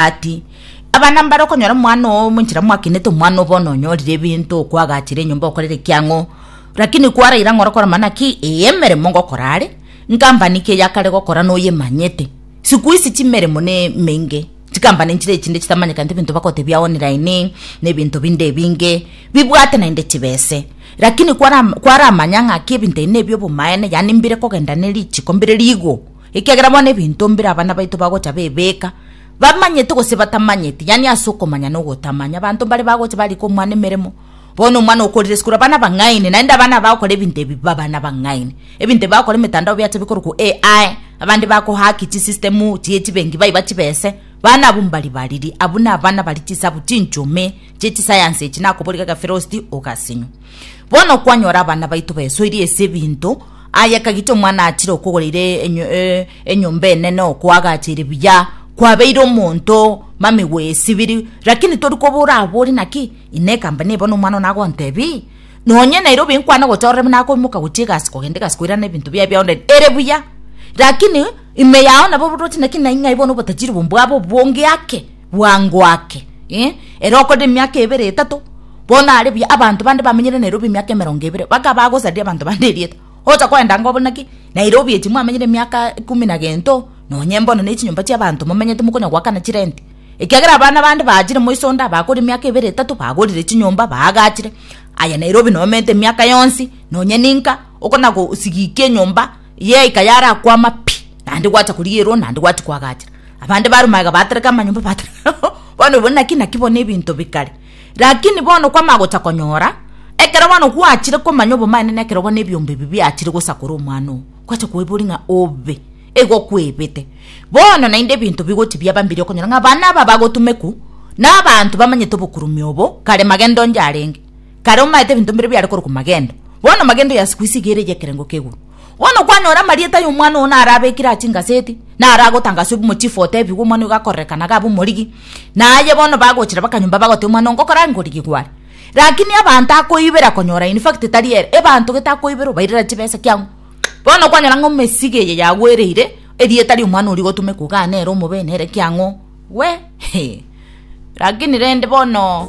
ati, Abana mbare okonyora omwana oo omonchera mwakinete omwana oo bono onyorire ebinto okwagachire enyomba okorere ekiang'o rakini kwaraire ang'ore okora mana ki eye emeremo ngokora are nkampani ki eyakare gokora noyemanyete sikuisi chimeremo ne emenge chikampani nchire echinde chitamanyekante ebinto bagotebia online na ebinto binde ebinge bibwate naende chibese rakini kwara kwaramanya ng'aki ebinto ebi nebi obomaene yaani mbire kogenda ne richiko mbire rigo Ekiagera bono ebinto mbire abana baito bagocha bebeka, bamanyete gose batamanyete, yaani ase okomanya na ogotamanya. Abanto mbare bagocha barika omwana emeremo, bono omwana okorire sikuru abana bang'aini, naende abana aba bagokora ebinto ebi mbe abana bang'aini. Ebinto ebi bagokora emetandao biacha bikorokwa AI, abande bako hack chisystem chie chibenki baiba chibesa, bana abwo mbari bariri, abwo nabana bari chisabu chinchomee chie chisayansi echi, nakoboria gaka Firosti, ogasinywa. Bono kwanyora abana baito besoirie ase ebinto, aye kagita omwana achire okogora ire enyo, e, enyomba enene okoagacha ire buya, kwabeire omonto mamigo esibiri, rakini tori koba orabore naki ine ekambani eye bono omwana one agontebii nonye Nairobi nkwane gocha orore buna akoimoka gochia egasi kogenda egasi koirana ebinto biaye bia online ere buya, rakini ime yao nabo borwati naki naing'ai bono obotajiri obo mbwabo obonge ake. bwango ake, eh, ere okorire emiaka ebere etato, bono are buya, abanto bande bamenyire Nairobi emiaka emerongo ebere, baka bagosaria abanto bande erieta, ocha koenda ng'a obore naki Nairobi echi mwamenyire emiaka ekuumi na gento, nonye mbono ne chinyomba chi'abanto momenyete mokonya goakana chirenti, ekiagera abana bande baachire moiso onde abakorire emiaka ebere etato, bagorire chinyomba, baagachire, aye Nairobi nomentete emiaka yonsi, nonye ninka, okona gosigikia enyomba. Yaika yarakwama pi, naende gwacha korigerwa, naende gwacha koagachera. Abande bare magega batereka amanyomba batereka bono bono naki naki bono ebinto bikare. Lakini bono kwamanya gocha konyora, ekero bono gwachire komanya obomanene na ekero bono ebiombe ebi biachire gosakora omwana oo, gwacha koiboria ng'a obe, igo kwebete. Bono naende ebinto bigochi biaba mbiya okonyora ng'a abana aba bagotumekwa na abanto bamanyete obokurume obo kare magendo onde arenge. Kare omaete ebinto mbire biare korokwa magendo, bono magendo ya sikuisi iga ere y'ekerengo k'eguru. Bono kwanyora amarieta ay'omwana oo narabekire aa chingaseti, naragotangaswe obe omochifu otebigwe omwana oyo gakorereka na gabe omorigi, na aye bono bagochira bakanyomba bagoteba omwana oo ngokora aa ngorigi gware. Lakini abanto akoibera konyora in fact tari ere, ebanto gete akoibera obairera chibesa kiang'u. Bono kwanyora ng'a omesige eye yagwereire, erieta ri'omwana oria rigotumeka iga aa nere omobe nere kiang'u, we, hee. Lakini rende bono.